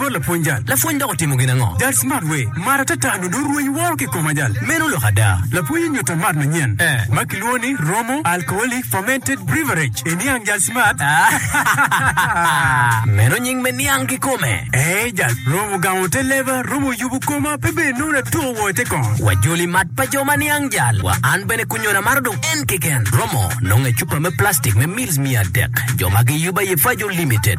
Kor lapwony jal. Lapwony dok otimo gin ango? Jal smart we. Mar atata nyo dong rweny woro ki koma jal. Meno lok ada. Lapwony onyuta mat manyen ma kilwongo ni Romo Alcoholic Fermented Breverage e niang jal smart. Meno nying me niang kikome. Ee jal. Romo gamo te leba, romo yubu koma pe bene nongo natuko woo ite kong. Wa joli mat pa jo ma niang jal wa an bene kunyon amaro dong en keken. Romo nongo e cupa me plastic me mils miya adek. Jo ma giyuba ye Fajo Limited.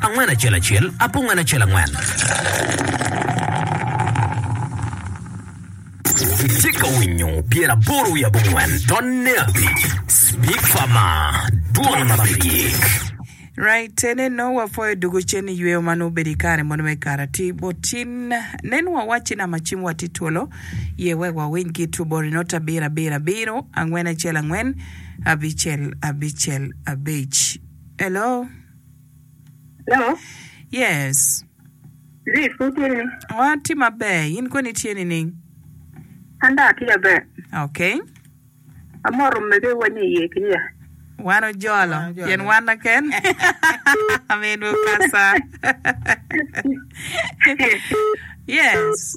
Angwen acel acel, apungwen acel angwen. Itye ka winyo pyer aboro wiye abongwen tonne abic, Speaker ma dwong ma pe gik. Right ene no wapoyo dugu cen i yweyo ma nongo obedo i kare mono me karati bot cin nen wawacci nama cim wa tye twolo ye wek wawiny ki twobori not abiro abiro abiro angwen acel angwen abicel abicel abic hello Hello. Yes. Zee pud tye ni? Oh, atye maber. In koni tye nining? An dong atye maber. Okay. Amoto mege wa ni iye ki ya. Wan ojolo. Wan ojolo. Pien wan naken. Amin Mukasa. yes.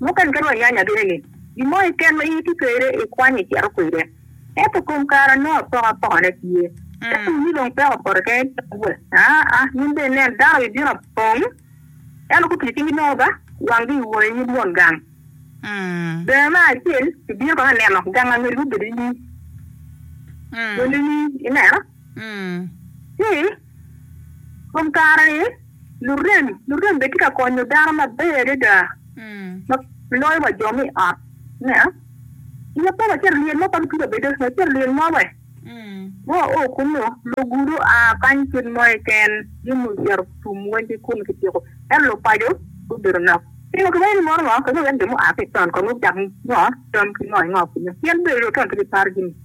Mukene kadi wanyanya bino ni gin mo keken ma in itye kwede ikwanyo icito kwede. Ento kom kare anongo apokapokane tye. Ka tum ni dong peko opoto kene itye ka wot, aa, in bene nen, dano bibino apong, ento gupiyo cinggi nono ba, wanggi iwor inyim Won gang. Bene me acel, ibino kono aneno gang angeli gubedo inyim. Won inyim, ineno? Ci. Kom kare-ni, lurem lurem bene tye ka konyo dano maber adada ma loyo wa jo me i ot. Nia, i ya pe wacito lyel mo, kadi twero bedo wacito lyel mo we, ka wao kunnu, lugudo oa kany kit mo keken, gin ni ocito tum weny ki kunnu kityeko. Ento lupaco gubedo nok. Pingo ki wacci mono ngo? Kadi wek jo mua ki i taun kong gucak ngo, tam ki ngo ki ngo kunnu. Pien bedo dong taun pe giparo jami.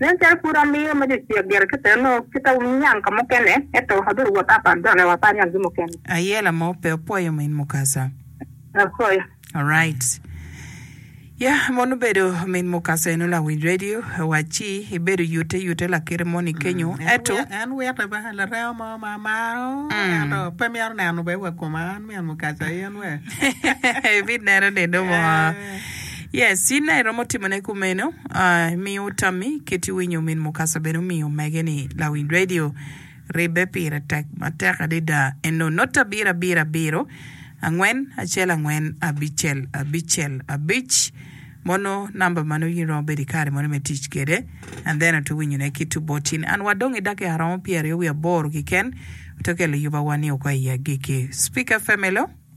Nen calo pud amiyo ma jo cek gire kit eno, kita wuniang ka mukene, ento abedo wot apat dok lewa apar niang gi mukene. Ayela mo pe opwoyo min Mukasa. Apwoyo. Alright. Ya, mon obedo min Mukasa eno lawiny radio, wacci ibedo yute yute lakite moni kenyo, ento. En witte ba, laremo mo ma amaro, ento pe myero neno be wa koma an min Mukasa in we. Ibineno nino mo. Yes, in nayi iromo timone kumeno, ah, imiyo tammi kit iwinyo min Mukasa bene omiyo omege ni lawiny radio ribbe pire tek matek adida eno not abiro abiro abiro angwen acel angwen abicel abicel abic mono number mano in iromo bedo ikare mono me tic kede and then oto winyo ne kit oboti ni an wadong idakika romo pyeraryo wiya boro kiken oto kelo yuba wa ni oko iya giki speaker family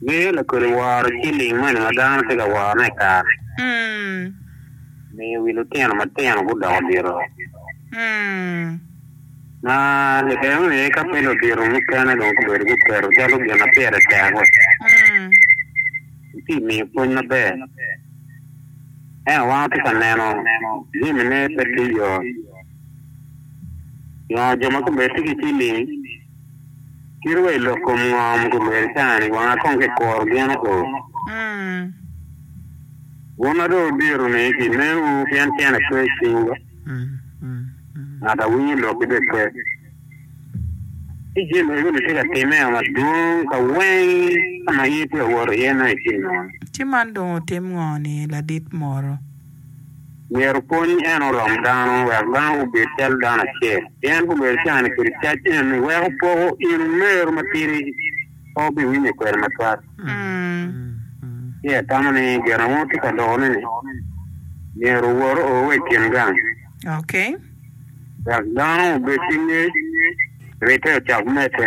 Miyo lakodi woro ciling moni ma dano tye ka worone i kare-ni. Miyo wi lutino matino gudoko diro ma kiketo ni ka pe ludito mukene dong gubedo guketo calo gin ma pire tek wek eti miyo pwony maber. Ento wan watye ka neno jamine pe tye yot. Nyo jo ma gubedo tye ki ciling. Kit wa i lok kom ngo ma gulwero i cawa ni wanga kong ki kuro gin o. Bun a dong odiro ni ki nen wu pien tyen a pe i cing ga, ngat a winyo lok ki be pe. Ci jin mego ni tye ka time o madwong ka weng ka ma in pe i woto iye nongo i cing nono. Ci man dong otim ngo ni ladit moro? myero pwony en orom dano wek dano gubed calo dano acel, pien gubedo cani kede cac en iweko poko in omeru matidi pe wubiwinyo kwede matwal. Ci atamo ni gin ma wun wutye ka loko-ni-ni myero owor oo wa i kin gang wek dano obed ki ngec, ribbe ocak medde.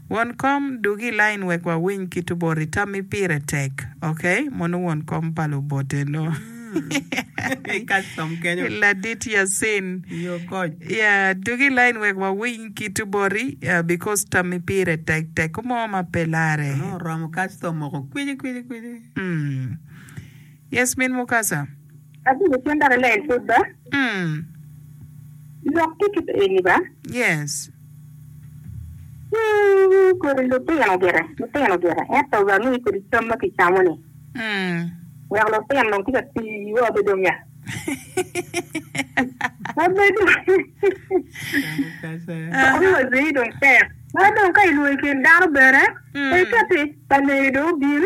Won kom dug i lain wek wawiny kit oboti tammi pire tek ok mono won kom pa lubote no ladit Yasin yeah dug i lain wek wawiny kit oboti because tammi pire tek tek ko mo ma pe lare. Yes min Mukasa. Abino cen dok alen pud ba. Mm. Lok ki kit eni ba. Yes. Mm, kodi lutino gire, lutino gire. Ento ba mi kodi cam ma kicamo ni. Mm. Wek lutino dong tika ti wa obedo dong ya. Obedo. Mukasa. Obedo waziri dong tek. Ma dong ka ilwongo kin dano bene. Mm. Pe kati, pa ledo bin.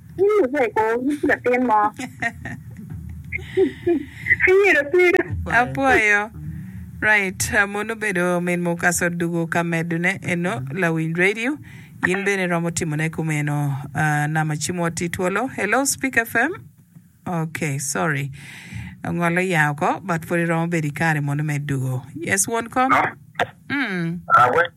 Cing luweko nyig latin mo. Ayero twega. Apwoyo. Right, mono obedo min Mukasa Odugo ka medone eno lawiny radio in bene iromo timone kumeno ah, nama ci mwot i twolo. Hello Speak FM. Ok, sorry. Ongol oya oko but pud iromo bedo i kare mono me Dugo. Yes won kom. Mm.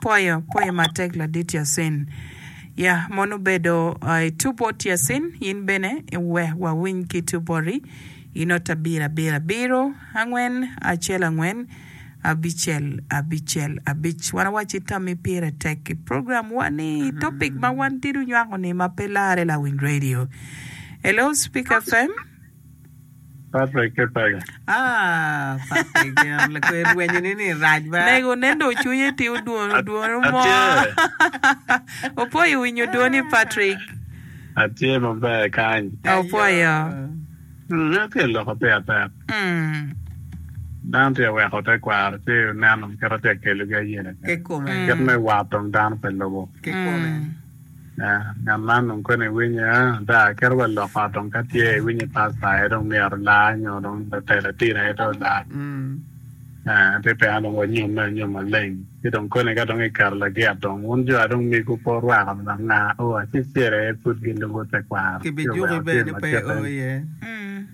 Pwoyo, pwoyo matek ladit Yasin. Ya mono obedo I two bot Yasin in bene wek wawiny ki two boti I not abiro abiro abiro angwen acel angwen abicel abicel abic wan awaci tammi pire tek I program wa ni topic ma wan tidi onywako ni ma pe larre lawiny radio. Hello speak FM. Patrick ki Paga. Ah, Patrick gin lakwe rwenyo ni ni rac ba. Nego nen do cwinye ti odwon odwon omo. Atye. Opwoyo winyo dwoni Patrick. Atye maber kany. Opwoyo. Hmm meno tye loko peya tek. Hmm. Dano tye weko te kwaro ci oneno kit atye kelo gi ayene. Kit me war dong dano pe lubo. Kikome. Ngat man dong koni iwinye ada, kit wa lok ot dong ka tye iwinyo i pasta aye dong myero olar nyo dong latel latin aye dong olar. Aa, pe pena dong wanyomme anyom maleng. Ci dong koni ka dong iketo lagit dong wun jo a dong migu pe wurwako dong anga oo acel cel aye pud gilubo tekwaro ci oweko tyen macete?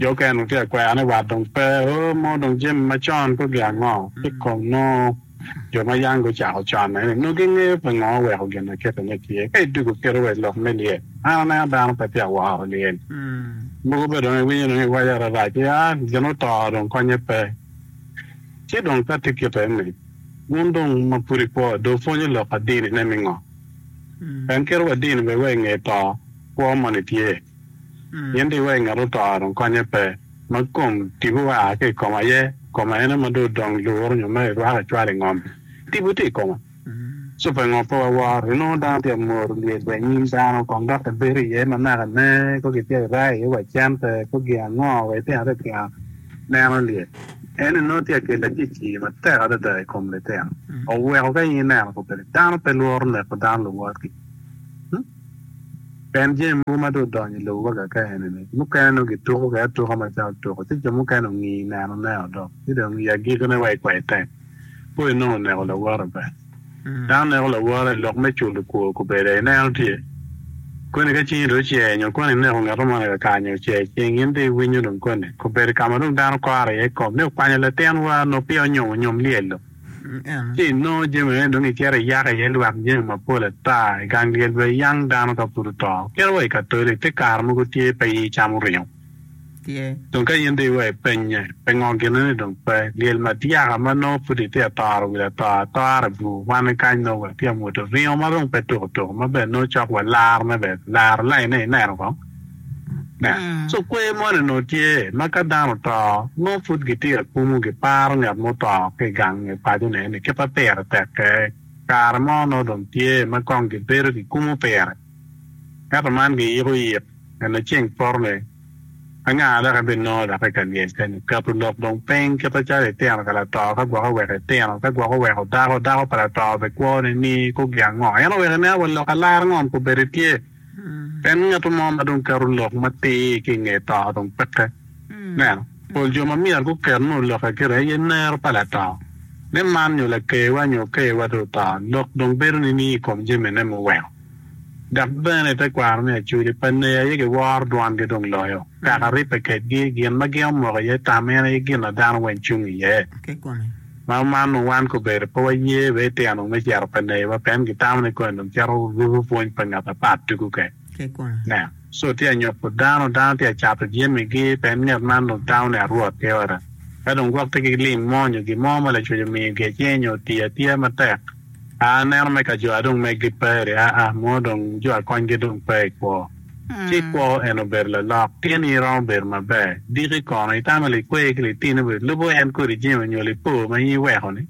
Jo okene otye ka kwero ni wat dong pe, oo mo dong jami macon pe oge ango ki kong nongo jo ma yam gucako con eni nongo gingeyo pingo oweko gin aketa ni tye. Ka idwogo kite wa i lok me lyel, an aneno dano pe tye ka woro lyel, mogo bene dong iwinyo dong iwaco ararac ni aa gin oto dong konye pe. Ci dong ka tye kite eni, wun dong ma pud ikwo dong wupwonyo lok adini ne mingo? En kit wa dini bene wa inge to kwo moni tye? In di wai ngat oto dong konye pe, ma kom tipo wa ki i koma aye, koma ene ma dong odong luru nyo ma irwako icwalo i ngom, tipo tye i koma. Ci pe ngo pe waworo, inongo dano tye ka moro lyel wa i nyim dano kong dok ebedo iye ma naka ne ko kitye ka rayo iye wa cente ko gin ango wa itino litino neno lyel. Eni nongo tye ka kelo acicir matek adada i kom litino, oweko ka in ineno kobeddi dano pe lworo neko dano luwotgi. Pien jami mogo ma dong odonyo i lobo ka ka eni-ni, mukene nongo kituko kwede atuka macalo tuko, ci jo mukene ongi i nenoneo dok, ci dong i agikine wa i kwai tek, po inongo oneko lawote pe. Dano neko lawote i lok me culo kwo kubeda ineno tye. Koni ka cingi dong ocey nyo koni ineko ngato moni kakar nyo ocey i cing, in dong iwinyo dong koni? Kubeda ka ma dong dano kore iye i kom ni okwanyo latin war nongo peya onyom onyom lyel-lo. Ci inongo jami meno dong icito iyako iye lwak jami mapol ata i gang lyel wa i yang dano ka pud oto. Kit wa i Katoli, te kare mogo tye pe i camo ringo. Dong ka in dong iweko ipennye, pe ngo gine ni dong pe. Lyel madyaka ma nongo pud itye atoro wil ato atora bur kwane kany nongo watye amwodo ringo ma dong pe tuko tuko ma bene nongo cok wa larone bene laro lainne ineno kong. So kwer moni onongo tye ma ka dano oto nongo pud gitye ka kumo giparo ngat ma oto ki i gang i pacone ni kit ma pire tekke kare mo nongo dong tye ma kong gibedo gikumo pire ento man giyiko yik nyo ni ceng poto ni anga dok ebinongo dok i ka lyecce nyo keto lok dong piny kite calo itino ka lato ka gwok oweko itino ka gwok oweko dako dako pa lato bikwo ni ni kogi ango en oweko ineno wa lok alar ngo nyo kobedi tye Pien ngat mo ma dong keto lok matir ki i nge to dong peke. Neno, pol jo ma myero guket nongo lokke gire aye nero pa lato. Ni man nyo lakerwa nyo okerwa dong oto, lok dong bedo nining i kom jamine muweko? Dok bene i tekwaro ni Acoli pa Neya aye giworo dwangi dong loyo, kaka ribbe kedgi, gin ma gin omoko iye tam en aye gin ma dano weng cung iye. Ma omanno wan kobedo pe waye be itino me cito pe neyiwa pien gitamo ni koni dong cito ruko pwony pa ngat apat tuku kek. Nen, co tye anyopo dano, dano tye acato jemigi pien ngat man dong tamo ni arwot ki ota. Ka dong gwok tye ki lim mo nyo gin mo ma lacwec omiyo gi acing nyo otiyo atiya matek, a aneno me kajoa dong megi pe aa mo dong jo akonygi dong pe i kwo. Ci kwo en obedo lalok, pien in iromo bedo maber. Diki kono, itamo likwer ki litini obedo lubo en kodi jami onyo lipo ma in iweko-ni?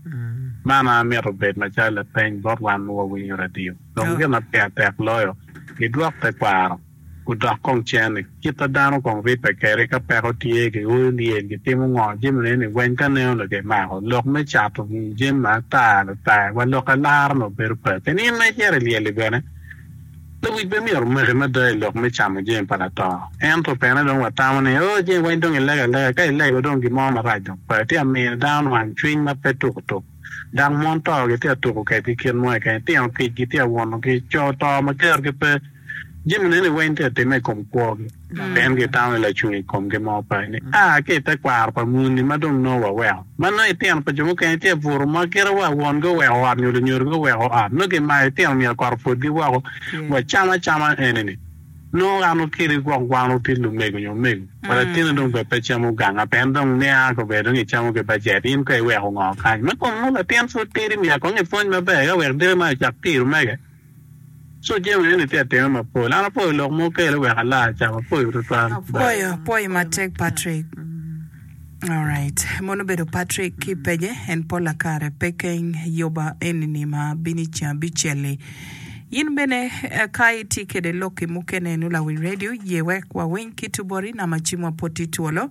Man a mito obed macalo lapeny bot wan ma wawinyo radio. Dong gin ma pire tek loyo, gidwok tekwaro, gudok kong cene. Kit ma dano kong ribbe kede ka peko tye, gioyo lyel, gitimo ngo, jami ma eni weny ka neno onongo kimako. Lok me cato jami ma ata, lutaye, wa lok alara-ni obedo pe. Keni in ma icito i lyel-li bene? Lewic bene myero omaki mada i lok me camo jami pa lator. Ento pene dong watamo ni, 'Oo, jami weng dong ilego alega. Ka ilego, dong gin mo marac dong pe. Tye amino dano nwang cwiny ma pe tuko tuk. Dang mon to, gitye atuko kedgi kit mo keken. Tino kicgi tye awunogi. Co to ma kerogi pe, jami neni weng tye atimme i kom kwogi. Pien gitamo i lacung i komgi mo pe ni, 'A ki i tekwaro pa muni ma dong nongo waweko, ma nongo itino pa jo mukene tye abuto ma kite wa won guweko ot nyo lunyodo guweko ot, nongo gimayo itino myero kot opwodgi woko. Wacam acama eni-ni, Nongo an okeli gwok wan otit lumego nyo omego, wa latino dong bed pe camo ganga pien dong nia ka obedo dong icamo ki bajet, in kono iweko ngo kany? Ma kong nongo latin pud tidi myero kong ipwony maber eka wek diki man ocak tiro mege. Co jami eni tye atima mapol. An apwoyo lok ma wukelo wek ala acam. Apwoyo tutwal. Bye. Apwoyi matek Patrick. Alright mono obedo Patrick ki page en pola kare pe keng yoba enini ma bino i ceng abicelli in bene ka itye kede lokki mukene inu lawi radio ye wek wawiny kit obori nama cimwa pwod tye twolo.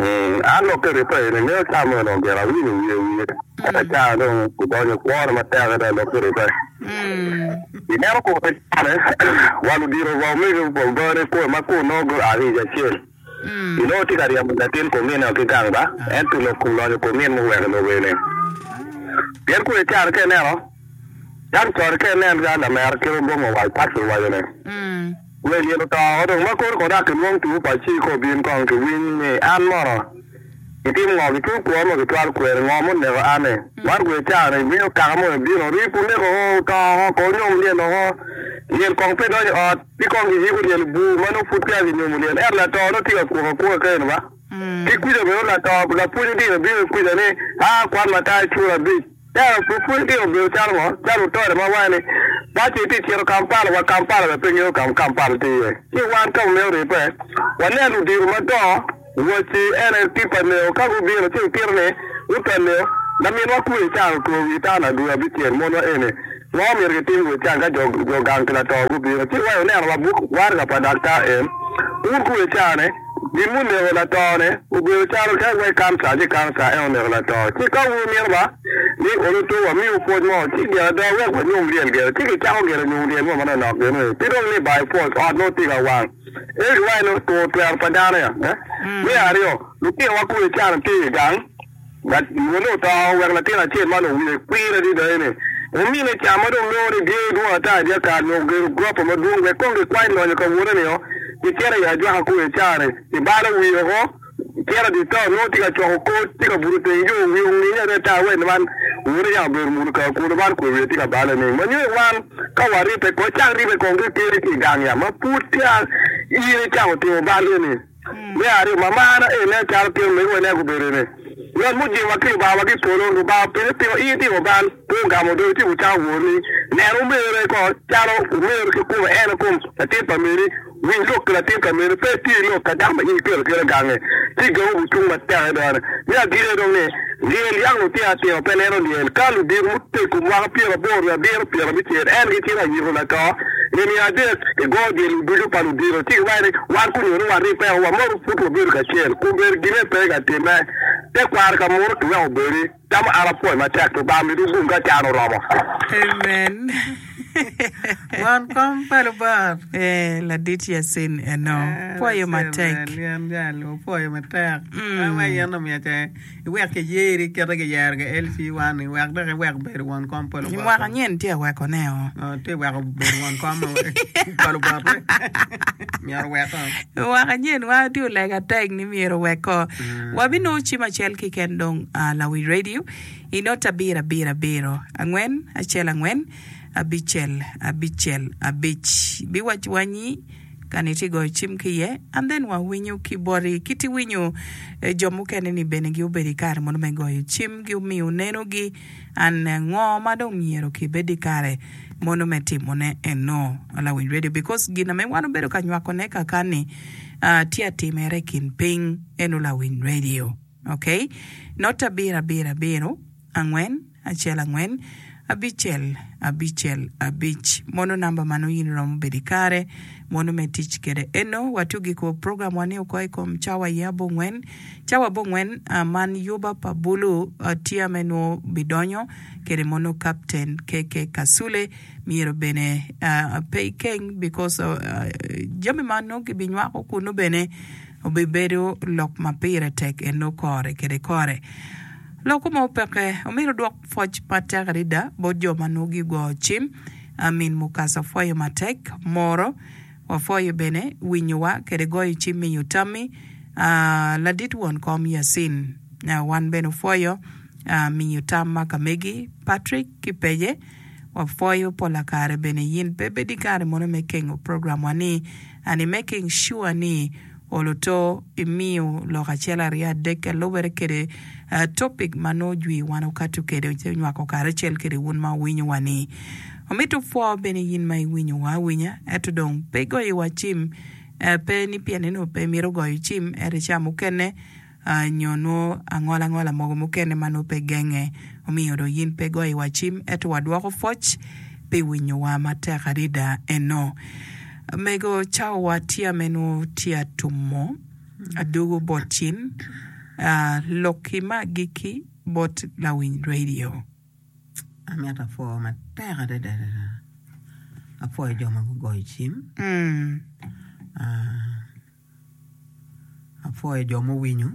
An dok kede Epuraim engeyo ca meno, omyero awiny i wiye wiye. Eka ca dong gudonyo i kwone matek adada lok kede Epuraim. I neno kor pe cane, wal odiro wa omege wa ogone i kome ma kun nongo gua ki i acel. Inongo tye ka ryemo latin komin-ni wa ki gang ba, ento lok kun lonyo komin muweko lok eni. Pien kun ican ka ineno, cam cone ka inen ka lamera kite ogongo wa i pat kiwaco ni, Wel yen oto dong ma kore kore dok kilwong tuo pa ci ka obin kong ki winy ni an mono gitimo ngo ki tuo kwor ma gitwal kweri ngo ma oneko an ni man guye cawa ni winyo kaka mono bino rii pu neko ho oto ho ko onyom lyen o ho lyel kong pe donyo ot ci kong gi yiko lyel bu ma nongo pud peya gi nyomo lyel eto lato no tye ka kwok akwoka kene ni ba ki kuca bene lato lapwony odilo bino ki kuca ni aa kwan matar cura abic Tero pwod pwony ki i obedo calo ngo? Calo wutore ma wange ni Bad ceng tye cito Kampala wa Kampala bene pe ngeyo kama Kampala tye iye. Ci wan ka wamito ripe wanen ludito mado wacci en aye Tipa Leo ka gubino ci gukito ni Uta Leo laminwa Kuye caro two wi tana dwe abicel monwa eni. Ma omyero kitim wek can ka jo gang pi lato gubino, ci wa ineno labuk waraga pa daktar en. Wun ku icanne, gin muneko latone obedo calo ka iwaci kanca, ci kanca en oneko lato. Ci ka wun wumito ba ni onutu wamiwu pwoc mo, ci gin ada wek wanyom ryel gire. Ci kicako gire nyom ryel mo manonok gini, pi dong ni ba ipwoc, ot nongo tye ka wang. Ento giwaci ni otwero pa dano-ni. Me aryo, lutinowa ku icano tye i gang. Ngat mo ni oto wek latin acel man owiye kwir adida ene, omine ca ma dong nongo ni dye dwong ata dyakal nyo ogero gurofa madwong wek kong gikwany lonyo ka wone nio gicito i ajwaka koo i care ni balo wiye oko cito dye to nongo tye ka coko kor tye ka buto teng yo wiye onginge adada wek ni man wone yam obedo muno kar kunu man kwe wiye tye ka bale ni manyo i wan ka waripe kong ecak ripe kong ki kele ki i gang yat ma pud peya in icako timo bal eni. Me aryo, ma marra en nen calo pien omegowa nen gubedo ni yot me jingowa ki Lubangawa ki i polo. Lubanga openye, Pingo in itimo bal pe ogamo odoo ityeko cawo woroni? Nen omerre ko calo omer ki kome ene kom latin pa meri. Winy lok ki latin pa meri, pe itye lok ka dako ma in iketo kite gange, ci gangi gucung matek adada. Me agikki aye dong ni, Lyel yang lutino atino pe neno lyel. Ka ludito mutego mwaka pyeraboro nyo abiro pyerabicel en gitino ayiko lato i nino adek i gor jemi ducu pa ludito ci giwaco ni wan kunyo ni warib peko wa modo pud wabedo kacel kun bed gine pe ka timme te kwaro ka muto ki weko obedi tamo an apwoy matek lubanga miti gum ka can oromo. Amen. Won kom pa Lubot. Eh, ladit Yasin eno. Pwoyo matek. Amen. Yan gal, wapwoyo matek. Mm. Awa yen omiyo ce. iwek kiyeri ikete kiyero KLC wani wek dok iwek bedo won kom pa lubot. I mwaka nyen tye aweko ne o. Oh, tye iweko bedo won kom pa lubot ni myero weko. I mwaka nyen wa tye olega atek ni myero weko. Mm. Wabinongo cim acel kiken dong uh, ah, Lawi Radio inot abiro abiro abiro angwen acel angwen abicel abicel abic biwac wanyi Kani itye goyo cim ki iye and then wa winyo ki boti kit iwinyo jo mukene ni bene gi obedo ikare mono me goyo cim gi omiyo neno gi and ngo ma dong myero ki bed ikare mono me timo ne eno lawiny radio because gina me wan obedo ka nywako ne kakani tye atimere ikin piny eno lawiny radio. Ok. Not abirabir abiro, angwen, acel angwen, abicel, abicel, abic. Mono namba ma nongo in iromo bedo i kare mono me tic kede eno. Watiyo giko program wa ni oko ikom cawa aye abongwen. Cawa abongwen man yuba pa bulu tia me nwo bidonyo kede mono Captain KK Kasule. Myero bene pe ikeng because jami ma nongo kibinywako kunu bene. obibedo lok ma pire tek enok kore kede kore. Lokko ma opekke omito dwok pwoc matek adada bot jo ma nongo gigo cim. Amin Mukasa pwoyo matek, moro. Wapwoyo bene winyowa kede goyo cim miyo tammi ladit won kom Yacin. Wan bene opwoyo miyo tam ma ka megi Patrick ki Peye. Wapwoyo pola kare bene yin pe bedi kare mono me kengo program wa ni. and i making sure ni olo to imiyo lok acel aryo adek ka lubere kede topic ma nongo jwi wa nongo kato kede ci onywako karacel kede wun ma wuwinyo wa ni. Omito pwo bene yin ma iwinyo wa awinya eto dong pe igoyo wa cim pe ni pien ni nongo pe imito goyo cim ento ica mukene nyo nwo angolangola mogo mukene ma nwo pe genge. Omiyo do yin pe goyo wa cim eto wa dwoko pwoc pi winyo wa matek adida eno. Mego cao wa tia me nwo tia tumo adugu bot cin lok ki ma giki bot lawiny radio. Amito apwoo matek adada adada apwoyo jo ma gugoyo cim. Apwoyo jo muwinyo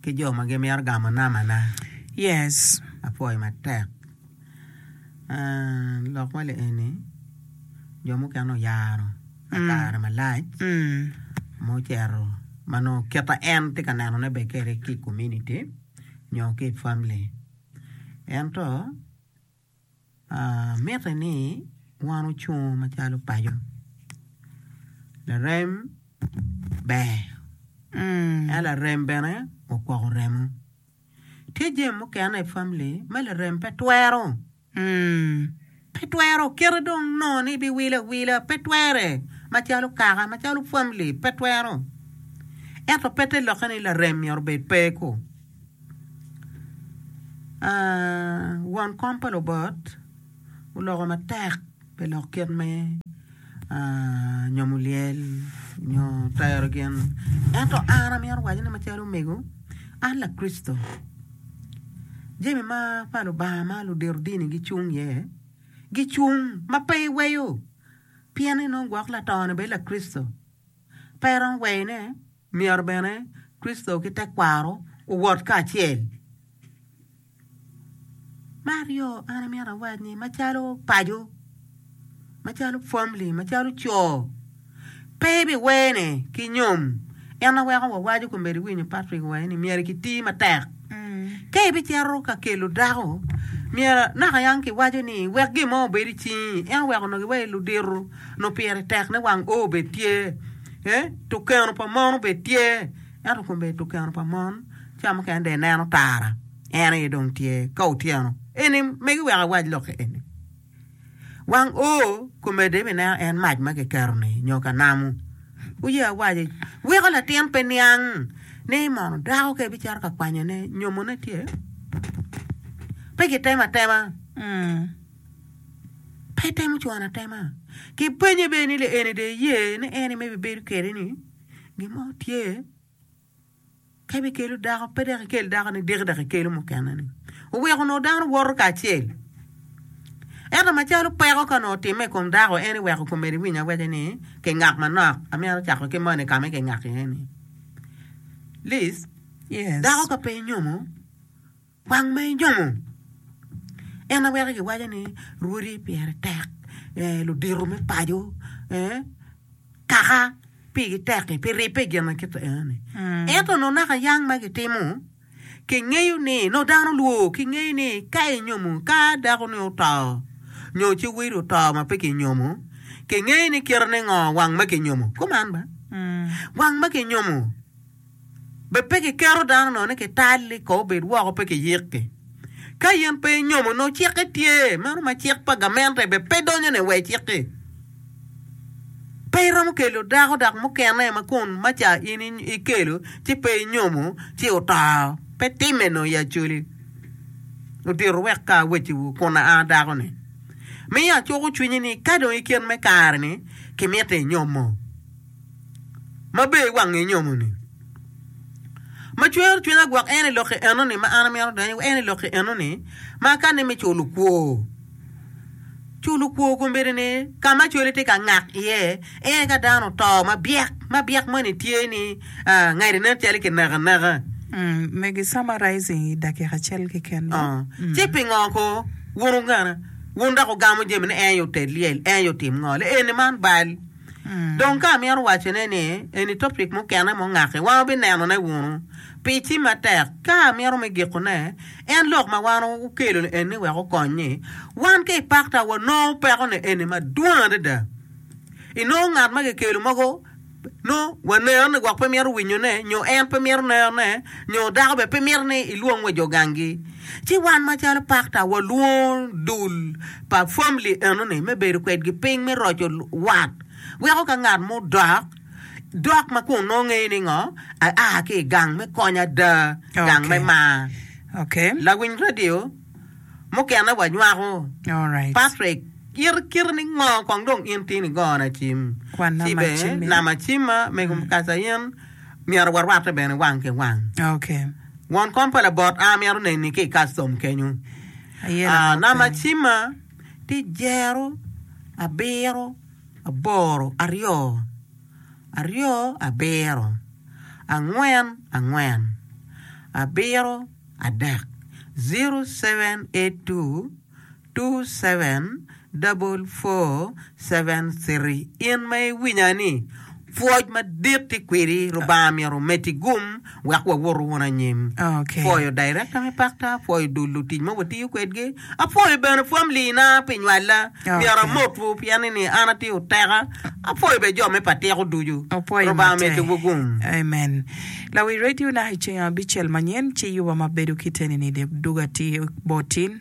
ki jo ma gimito gamo namana. Yes. Apwoyo matek. Ah, lok ma li eni jo mukene oyaro ka kare malac ma ocito ma nongo kite en tye ka nenone bene kwede ki i komuniti nyo ki i famili. Ento. Mitte ni wan ocung macalo paco larem ber ento larem bene okwoko remo tye jami mukene i famili ma larem pe twero pe twero kite dong nongo ni biwilo awila pe twere macalo kaka macalo famili pe twero ento pe te lokke ni larem myero obed pe-ku. Won kom pa lubot oloko matek pi lok kit me nyomo lyel nyo tero gin ento an amito waco ni macalo omego an lakricito jami ma pa Lubanga ma ludito dini gicung iye gicung ma pe iweyo pien ni nongo gwok lato-ni bene lakricito. Pe iromo weyone, myero bene Kricito ki tekwaro owot kacel. Me aryo, an amito awac ni macalo paco, macalo famili, macalo co, pe ibiwene ki nyom. En aweko wawaco kombeddi winyo Patrick owaco ni myero kiti matek. Ka ibicito ka kelo dako, myero naka yang kiwaco ni wek gin mo obed i cingi, ento wek onongo iwaci ludito onongo pire tek ni wang oo bene tye, tukeno pa mon bene tye, ento kombeddi tukeno pa mon ca mukene dong ineno tara en aye dong tye ka otyeno eni megi wek awac lok-ki eni. Wang O komedde mi neno en mac ma kiketo-ni nyo ka namo. Wuye awaca, weko latin pe niang ni mono dako ka ebicito ka kwanyone nyomone tye? Pe kitemo atema. Pe itemo cwano atema. Kipenye bene ni, Lieni dong iye ni en-ni ma ibibedo kwede-ni? Gin mo tye? Ka ibikelo dako, pe dok ikel dako nidiki dok ikelo mukene-ni. Oweko onongo dano woto kacel. Ento macalo peko ka onongo otimme i kom dako, en ni weko komedi winy awece ni kingak manok. Amyero acako ki moni ka ma kingak iye-ni. Liz, dako ka pe inyomo, Kwang ma inyomo. En aye weko giwaco ni rwodi pire tek, ludito me paco, kaka pigi tek-ki, pi ribbe i gin ma kit enoni. Ento nongo naka yang ma gitimo, kingeyo ni, nongo dano lwo, kingeyo ni ka inyomo, ka dakoni oto, nyo ci wadi oto ma pe kinyomo, kingeyo ni kite ningo wang ma kinyomo. Kuman ba? Wang ma kinyomo. Be pe kiketo dano nongo ni kital ni kong obed woko pe kiyikki? Ka in pe inyomo nongo cikke tye, meno ma cik pa gamente be pe donyo ne wa icikki. Pe iromo kelo dako dak mukene ma kun ma ca in ikelo ci pe inyomo ci oto, pe timme nongo ya coli. Odito wek ka aweciwu kun aa dako ni, miyo acuko cwinyi ni ka dong ikin me kare ni kimiti inyomo. ma ber iwangi inyomo ni ma cwero cwinya gwok en i lok i eno ni ma an amito donyo iye en i lok i eno ni ma ka ni me culo kwo culo kwo kombedi ni ka ma cwali tye ka ngak iye en ka dano oto ma byek ma byek moni tye ni ngadi nen calo ki neko aneka me gi summarizing i dakika acel ki ken mo ci pingo ko wun ogana wun dok ogamo jami ni en yo tel lyel en yo tim ngo le eni man bal Dong ka amito wacone ni eni topic mukene mungaki, wan wubinenone wunu. Pi ci matek, ka amito me gikone, en lok ma wan wukelo ni eni wek okony ni, wan ka i pakta wanongo peko ni eni madwong adada. I nongo ngat ma kikelo mogo nongo waneno ni gwok pe mito winyone, nyo en pe mito neno ne, nyo dako bene pe mito ni ilwong wa jo gangi. Ci wan macalo pakta walwongo dul pa famili enoni me bedo kwedgi piny me roco wat, weko ka ngat mo odok, dok ma kun nongo ngeyo ni ngo aa ki i gang me kony ada, gang me mar, lawiny radio mukene wanywako, Patrick, kite kite ni ngo kong dong in tye ni go nacim, ci bene nama cimma mego Mukasa in myero warwatte bene wang ki wang. Ngwon kom pa labot a amito neni ki i kastom kenyu. Namba cimma tye jero abiro aboro aryo aryo abiro angwen angwen abiro adek zero seven eight two. two seven double four seven three In ma iwinya ni, pwoc madit tye kwedi, Lubanga myero omeddi gum wek wawoto wunu anyim. Apwoyo Director me Pakta, apwoyo dul lutic ma watiyo kwedgi, apwoyo bene family na pi nywalla. Myero amotwu pien ni ni an atye oteka, apwoyo bene jo me patiko ducu. Lubanga omeddiwu gum. Amen. Lawi radio na i ceng abicel manyen ci yuba ma bedo kite ni ni dug atir bot tin.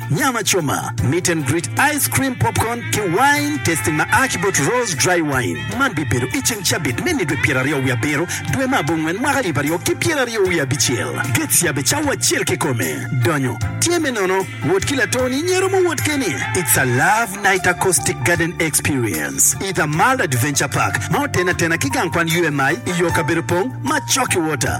Nyama coma, meet and greet, ice cream, popcorn, ki wine tasting ma a ki bot Rose Dry Wine. Man bibedo i ceng cabit me nidwe pyeraryo wiye abiro, dwe me abongwen, mwaka alip aryo ki pyeraryo wiye abicel. Gates yabbe cawa acel kikome. Donyo tye me nono. Wot ki latoni nyero mo wot keni. It's a love night acoustic garden experience i The Mall Adventure Park ma otene atena ki gang kwan UMI i yo kabedo pong ma Chocky Water.